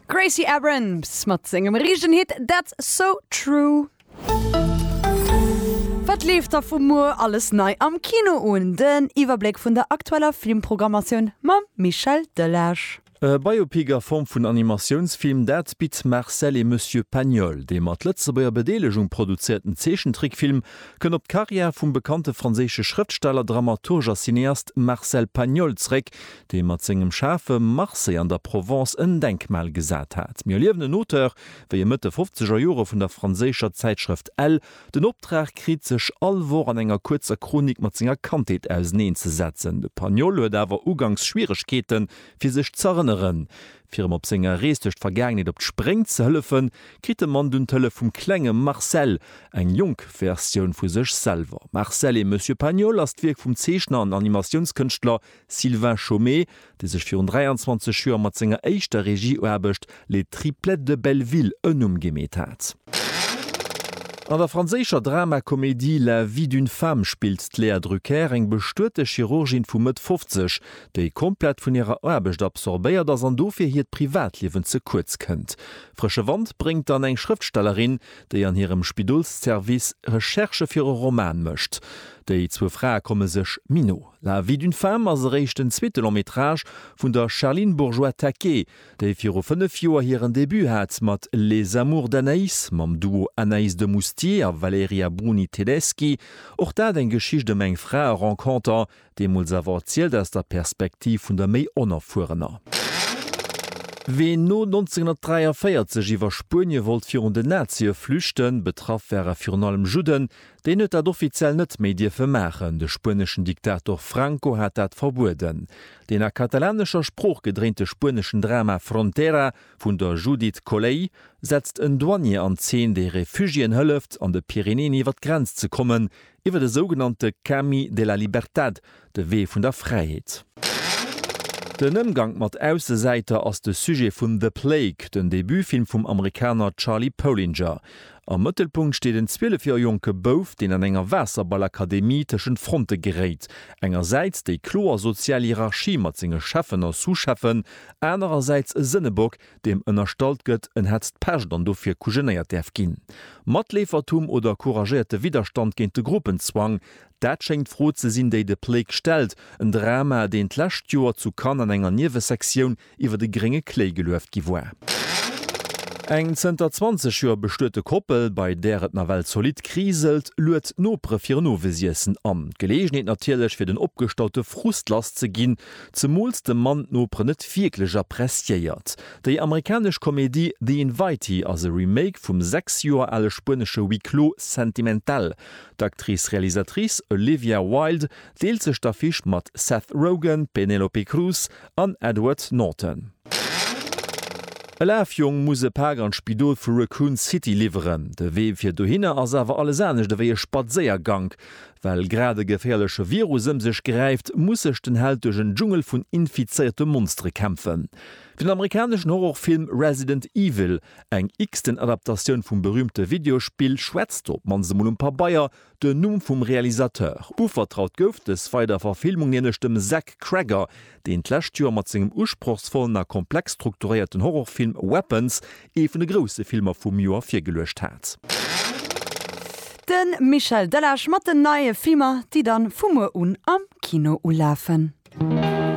Gracie Abrams mat sengem riichten Hit That's So True. Wat leeft da vu muer alles nei am Kino un? Den Iwwerbléck vun der aktueller Filmprogrammatioun mam Michel Delage. E Biopic a Form vun Animatiounsfilm, dat bitt Marcel et Monsieur Pagnol. Dee mat Lëtzebuerger Bedeelegung produzéierten Zeechentrickfilm kënnt op d'Karriär vum bekannte franséische Schrëftsteller, Dramaturg a Cineast Marcel Pagnol zeréck, dee mat sengem schaarfe Marseille an der Provence en Denkmal gesat hat. Mir erliewen en Auteur, wéi e Mëtt de fofzeger Jore vun der franséischer Zäitschrëft Elle den Optrag kritt, sech all Woch an enger kuerzer Chronik mat senger Kandheet auseneenzesetzen. De Pagnol huet awer uganks Schwieregkeete fir sech z'erënneren. Fir em op senger Rees duerch d'Vergaangenheet op d'Spréng ze hëllefen, kritt de Mann dunn d'Hëllef vum klenge Marcel, eng jonk Versioun vu sech selwer. Marcel et Monsieur Pagnol ass d'Wierk vum Zeechner an Animatiounskënschtler Sylvain Chomet, dee sech virun 23 Joer mat senger éischter Regieuaarbecht Les Triplettes de Belleville en Numm gemeet hat. An der franséischer Drama-Komedie La vie d'une femme spillt d'Léa Drucker eng bestuete Chirurgin vu Mëtt 50, déi komplett vun hirer Aarbecht absorbéiert ass an dofir hiert Privatliewen ze kuerz kënnt. Frësche Wand bréngt dann eng Schrëftstellerin, déi an hirem Spidolsservice Recherchë fir e Roman mécht. Déi zwou Frae komme sech méi no. La vie d'une femme ass eréischt den zweete Long-métrage vun der Charline Bourgeois-Taquet, déi viru fënnef Joer hiren Debut hat mat Les amours d'Anaïs mam Duo Anaïs de Moustier a Valerija Bruni-Tedeschi. Och dat eng Geschicht ëm eng Frae-Renconter, deemools awer erzielt aus der Perspektiv vun der méi Onerfuerener. Ween no 1943 iwwer Spuenie wollt virun den Nazie flüchten, betraff ware virun allem Judden, Deen huet dat offiziell net méi dierfe maachen, de spueneschen Diktator Franco hat dat verbueden. Deen a katalanescher Sprooch gedréinte spueneschen Drama Frontera vun der Judith Colley setzt en Douanier an Zeen, dee Refugiéen hëlleft, an de Pyrenäen iwwer d'Grenz ze kommen, iwwer e sougenannte Camí de la Libertad, De Wee vun der Fräiheet. Den Ëmgank mat Aussesäiter ass de Sujet vun The Plague, den Debutfilm vum Amerikaner Charlie Polinger. Am Mëttelpunkt steet en 12 Joer jonke Bouf, deen an enger Waasserballakademie tëschent Fronte geréit, engersäits déi kloer sozial Hierarchie mat senge Cheffen a Sous-Cheffen, anerersäits e Sënnebock, deem ënnerstallt gëtt, en hätt d'Pescht an dofir kujenéiert däerf ginn. Matleefertum oder couragéierte Widderstand géint de Gruppenzwang, Dat schéngt d'Fro ze sinn, déi de Plague stellt, en Drama, deen d'lescht Joer zu Cannes an enger Niewesektioun iwwert e grénge Kléi gelueft gi war. Eng zënter 20 Joer bestuete Koppel, bei där et nawell zolidd kriselt, luet d'Nopere fir en Owesiessen an. D'Geleegenheet natierlech, fir den opgestaute Frust lass ze ginn, zemools de Mann d'Noperen net wierklech appreciéiert. Déi amerikanesch Komedie The Invitee ass e Remake vum sechs Joer ale spuenesche Huis clos sentimental. D'Actrice-Realisatrice Olivia Wilde deelt sech d'Affiche mat Seth Rogen, Penelope Cruz an Edward Norton. E Lafjong muss e Pak an d'Spidol vu Raccoon City liwweren. De Wee fir dohinner ass awer alles anescht ewéi e Spadséiergank. Well grad e geféierleche Virus ëm sech gräift, muss sech den Held duerch en Dschungel vun infizéierte Monstere kämpfen. Den amerikaneschen Horrorfilm Resident Evil Eng x-ten Adaptatioun vum berüümte Videospill schwätzt, op d'mannst emol um Pabeier, den Numm vum Realisateur. Uvertraut gouf dës Weiderverfilmung nämlech dem Zach Cregger, deen d'lescht Joer mat sengem usprochsvollen a komplex strukturéierten Horrorfilm Weapons ee vun de grousse Filmer vum Joer virgeluecht hat. De Michel Delage mat den neie Filmer, déi dann vu muer un am Kino ulafen.